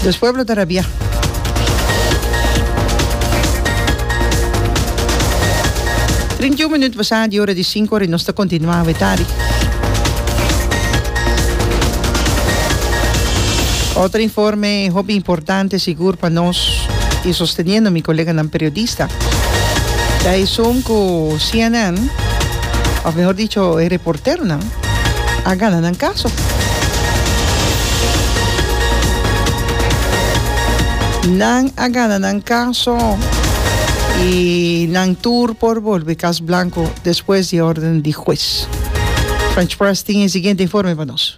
Nos pueblo ta rabia. Trinta i un minut pasá di ora di sinku ora i nos ta kontinuá awe tardi. Otro informe hopi importante sigur pa nos i sosteniendo mi koleganan periodista. Ta esun ku cnn, òf mehor dicho e reporteronan, a gana nan kaso. Nan a gana nan kaso i nan tur por bolbe Kas Blanku despues di órden di hues. French Press tin e siguiente informe pa nos.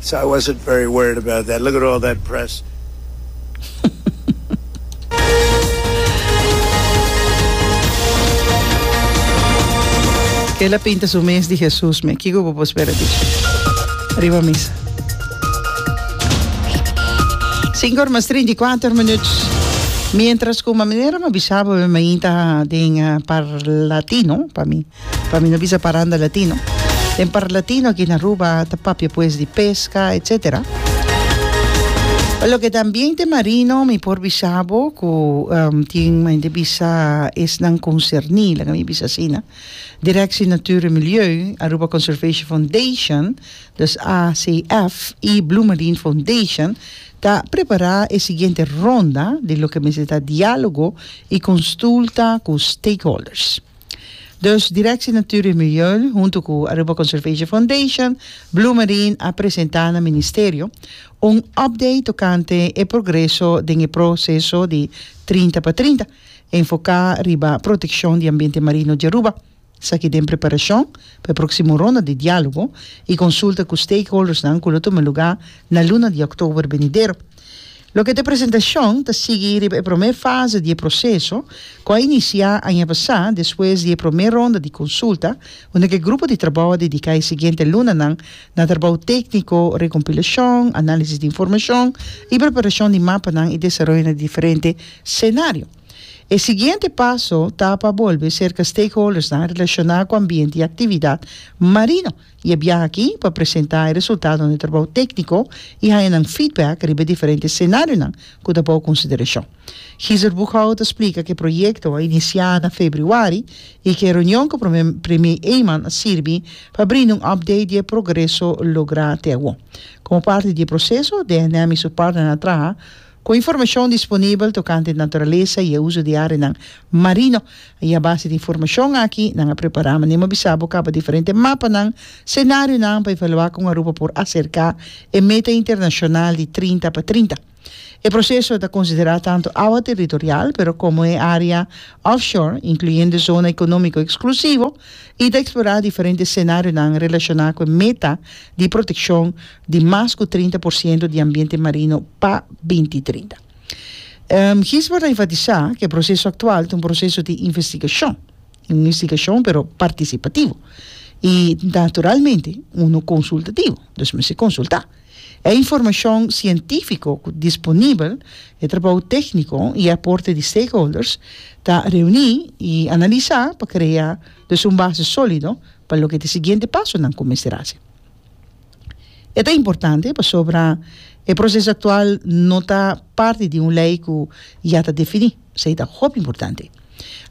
So I wasn't very worried about that. Look at all that press. Ela pinta su mes di Hesus me. Kiko bo por spera di? Riba misa. Cinco horas treinta y cuatro minutos. Mientras ku manera ma bisabo me mainta den uh, par latino pa mi. Pa mi no bisa paranda latino. Den par latino aki na Aruba ta papia pues di pesca etc. Pa loke ta ambiente marino mi por bisabo cu tin mente bisa esnan concerni laga mi bisa asina, Directie Natuur en Milieu, Aruba Conservation Foundation, dus ACF, y Blue Marine Foundation ta prepara e siguiente ronda di loke mester ta dialogo y consulta cu stakeholders. Dus Directie Natuur en Milieu hunto cu Aruba Conservation Foundation, Blue Marine a presenta na Ministerio un update tocante e progreso den e pro ceso di Trinta pa Trinta, enfoca riba proteccion di ambiente marino di Aruba. Esaki den preparacion pa e proximo ronda di dialogo y consulta cu stakeholdersnan cu lo tuma lugar na luna di october benidero. Loke ta e presentashon ta sigui riba e promé fase di e proseso ku a inisiá aña pasá despues di e promé ronda di konsulta unda ku e grupo di trabou a dediká e siguiente lunanan na trabou tékniko, rekompilashon, análisis di informashon i preparashon di mapanan i desaroyo na diferente senario. E siguiente paso ta pa bolbe serka stakeholdersnan relashoná ku ambiente i aktividat marino. Y e biaha aki pa presenta e resultado den e trabao tecnico y haña nan feedback riba e diferente escenarionan cu ta bao consideracion. Gisert Booghoudt a splica cu e proyecto a inicia na februari y cu e reunion cu Premier Eman a sirbi pa brinda un update di e progreso logra te awor. Como parti di e proceso, DNM y su partnernan a traha Ku informashon disponibel tokante naturalesa i e uso di áreanan marino, i a base di informashon aki nan a prepará manera mi a bisa bo kaba diferente mapanan, senarionan pa evaluá kon Aruba por aserká e meta internashonal di trinta pa trinta. E proseso ta konsiderá tantu awa territorial pero komo e área offshore, inkluyendo zona ekonómiko eksklusivo, i ta eksplorá diferente senarionan relashoná ku e meta di protekshon di mas ku trinta por siento di ambiente marino pa binti trinta. Gisbert a enfatisá ku e proseso aktual ta un proseso di investigashon, un investigashon pero partisipativo i naturalmente uno konsultativo, dus mester konsultá. E informashon sientífiko ku disponibel, e trabou tékniko i e aporte di stakeholders ta reuní i analisá pa krea dus un base sólido pa loke ta e siguiente pasonan ku mester hasi. E ta importante pasobra e proceso actual no ta parti di un ley cu ya ta defini, esey ta hopi importante.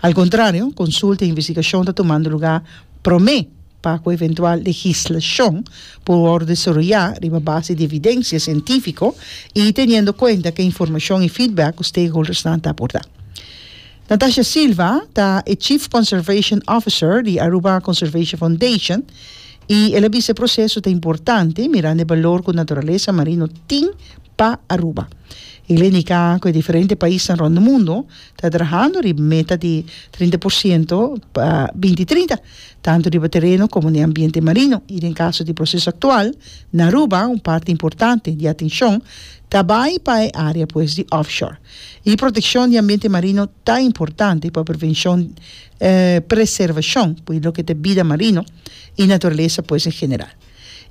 Al contrario, consulta y investigacion ta tomando lugar prome pa cu eventual legislacion por worde desaroya riba base di evidencia cientifico y teniendo cuenta cu informacion y feedback cu stakeholdersnan ta aporta. Natasha Silva ta e Chief Conservation Officer di Aruba Conservation Foundation y el a bisa e proceso ta importante mirando e balor cu naturalesa marino tin pa Aruba. El a indica cu e diferente paisnan rond e mundo ta trahando riba e meta di trinta por ciento pa binti trinta, tanto riba tereno como den ambiente marino y den caso di proceso actual na Aruba un parti importante di atencion ta bay pa e area pues di offshore. E protekshon di ambiente marino ta importante pa prevenshon i preservashon di loke ta e bida marino i naturalesa pues en general.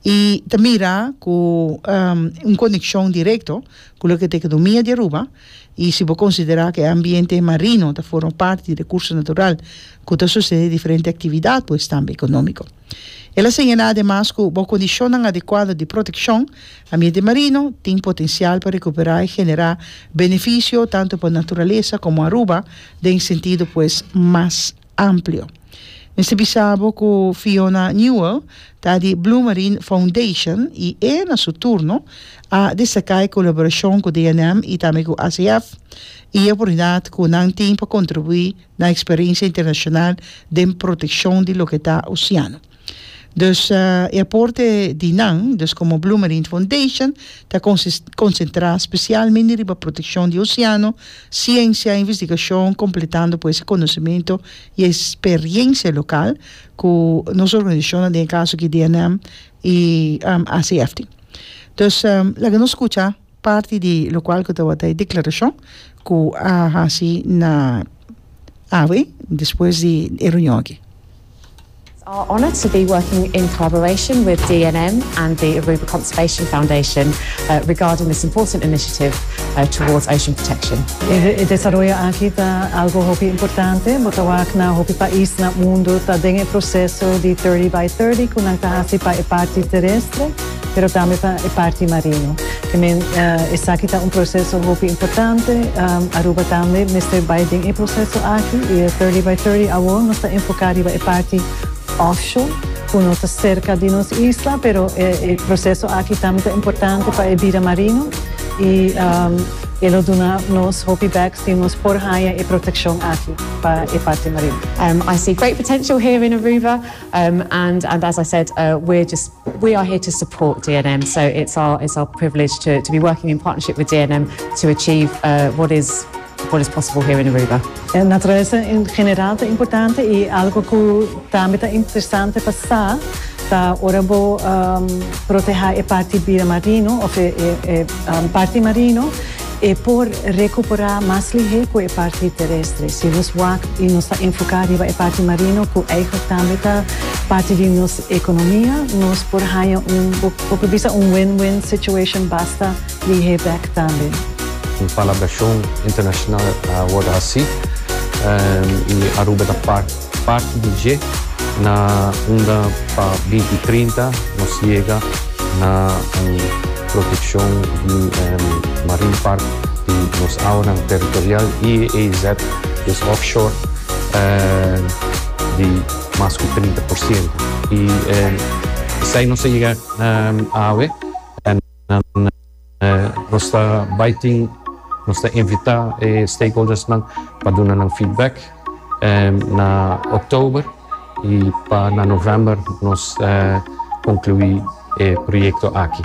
E ta mira ku un konekshon direkto ku loke ta e ekonomia di Aruba i si bo konsiderá ku e ambiente marino ta forma parti di rekurso natural ku ta sustene diferente aktividat pues tambe ekonómiko. El a señalá ademas cu bo condicionnan adecuado di proteccion, ambiente marino tin potencial pa recuperá y generá beneficio tanto pa naturaleza como Aruba den sentido pues mas amplio. Mester bisa bo cu Fiona Newell ta di Blue Marine Foundation y e na su turno a destacá e colaboracion cu DNM y tambe cu ACF y e oportunidad cu nan tin pa contribuí na experiencia internacional den proteccion di loke ta oceano. Dus e aporte di nan, dus como Blue Marine Foundation, ta concentra specialmente riba proteccion di oceano, ciencia, investigacion, completando pues e conocemento y e experiencia local cu nos organisacionnan, den e caso aki DNM y ACFT. Dus laga nos scucha. Parti di lokual ku tawata e deklarashon ku a hasi na awe despues di e reunion aki. It's our honor to be working in collaboration with DNM and the Aruba Conservation Foundation regarding this important initiative towards ocean protection. E desaroyo aki ta algo hopi importante, bo ta wak na hopi pais na mundo ta den e proseso di Thirty by Thirty ku nan ta hasi pa e parti terestre, pero tambe pa e parti marino. Te men esaki ta un proseso hopi importante, Aruba tambe mester bai den e proseso aki y e Thirty by Thirty awor nos ta enfoca riba e parti offshore cu no ta cerca di nos isla, pero e proseso aki tambe ta importante pa e bida marino y e lo duna nos hopi bek si nos por haya e proteccion aki pa e parti marino. I see great potential here in Aruba. Um and and as I said uh we're just we are here to support DNM so it's our it's our privilege to to be working in partnership with DNM to achieve uh what is what is possible here in Aruba. E naturesa en general ta importante y algo cu tambe ta interesante pa sa ta ora bo um proteha e parti bira marino of e e e parti marino E por recuperá mas lihé cu e parti terestre. Si nos wak y nos ta enfocá riba e parti marino, cu eigenlijk tambe ta parti di nos economia, nos por haña un, bo por por bisa un win-win situation basta lihé bek tambe. Un palabracion internacional a wordo hací y Aruba ta part. Parti di dje na unda pa binti trinta nos yega na un protekshon di Marine Park di nos Awanan Teritorial, IEEZ, des Offshore, di mas ku trinta por siento. I esei nos a yega awe. Nos ta bai tin, nos ta invita e stakeholdersnan pa duna nan feedback na oktober i pa na november nos conclui e proyecto aki.